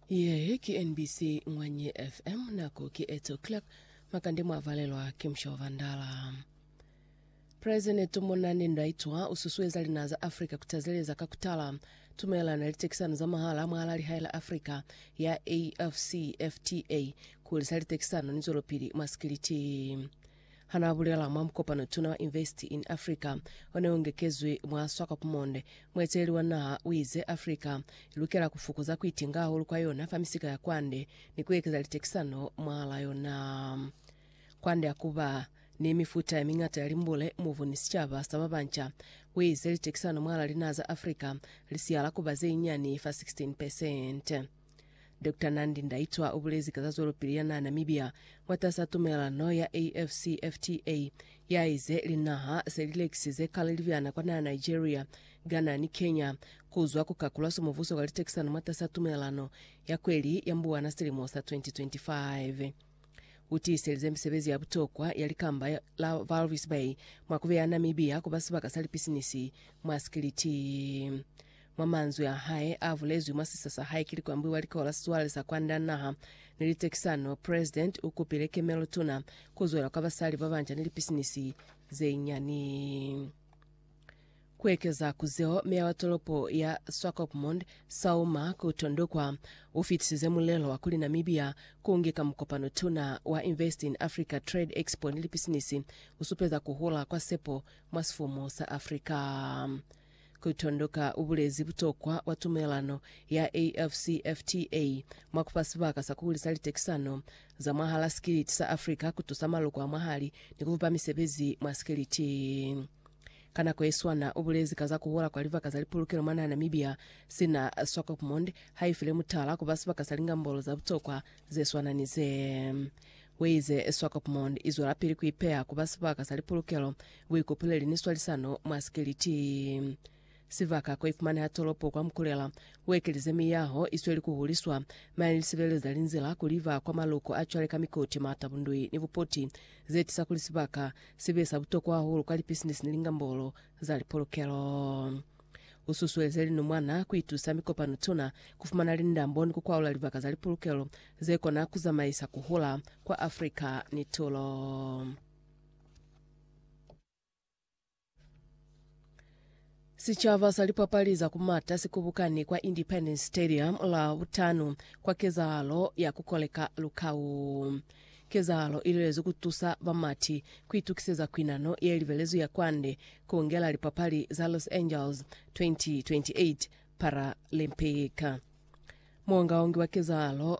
Ye ki NBC Ngwanye FM nako ki 8 o'clock makande mwavalelwa ki Mshaw Vandala. President Monane Ndaitwa ususueza linaha za Africa kutazeleza ka kutala tumelelano ya litekisano za mahala mwahala lihae la Africa ya AfCFTA kuhulisa litekisano ni zwelopili mwa sikiliti. Hanaabulela mwa mukopano Tuna wa Invest in Africa oneungekezwi mwa Swakopmund, mueteleli wa naha uize Africa ilukela kufukuza kuitinga hahulu kwa yona fa misika ya kwande ni kuekeza litekisano mwahala yona. Kwande hakuba ni mifuta yamiñata ya limbule, mubu ni sicaba sa babanca, uize litekisano mwahala linaha za Africa lisihala kuba zeinyiani fa 16%. Doctor Nandi Ndaitwah ubulezi ka za zwelopili ya naha Namibia mwatasa tumelelano ya AFCFTA yaize linaha se lilekisize kale libyana kwa naha Nigeria, Ghana ni Kenya kuzwa ku kakulwa so mubuso kwa litekisano mwatasa tumelelano ya kweli ya Mbuwana silimo sa 2025. Utiiselize misebezi ya butokwa ya likamba la Walvis Bay mwa kubeya Namibia kuba sibaka sa lipisinisi mwa sikiliti. Mwa manzwi a hae a bulezwi mwa sisa sa hae ki likwambi wa likolo la sizwale sa kwanda naha ni litekisano, President u kupile kemelo tuna ku zwela kwa basali ba banca ni lipisinisi ze nyani. Ku ekeza ku zeo, meya wa tolopo ya Swakopmund, Sauma Kutondokwa, u fitisize mulelo wa kuli Namibia ku nge ka mukopano tuna wa Invest in Africa Trade Expo ni Lipisinisi, u supeza ku hula kwa sepo mwa sifumu sa Africa. Kutondoka ubulezi butokwa bwa tumelelano ya AFCFTA mwa kufa sibaka sa kuhulisa litekisano za mwahala sikiliti sa Africa, kutusa maloko a mwahali ni kubupa misebezi mwa sikiliti. Ka nako yeswana, ubulezi ka za kuhola kwa libaka za lipulukelo mwa naha Namibia, sina Swakopmund haifile mutala kuba sibaka sa lingambolo za butokwa zeswana ni ze. Weize Swakopmund izwelapili kuipeya kuba sibaka sa lipulukelo Buikupuleli ni swalisano mwa sikeliti. Sibaka ko ifumaneha tolopo kwa Mukulela, ku ekelize miyaho i sweli ku huliswa, mane ni sibeleza linzila ku liba kwa maluko a cwale ka mikoti, mata, bundui, ni bupoti, ze tisa kuli sibaka si be sa butokwa hahulu kwa lipisinisi ni lingambolo za lipolokelo. U susueleze linumwana ku itusa mikopano tuna, ku fumana lindambo ni ku kwaula libaka za lipolokelo ze kona ku zamaisa ku hula kwa Africa ni tulo. Sicaba sa lipapali za ku mata si kubukani kwa Independence Stadium la butanu kwa kezahalo ya ku koleka lukau. Kezahalo i lwelezwi ku tusa bamati ku itukiseza kwinano ye libelezwi ya kwande ku ngela lipapali za Los Angeles 2028 Paralympic. Muongaongi wa kezahalo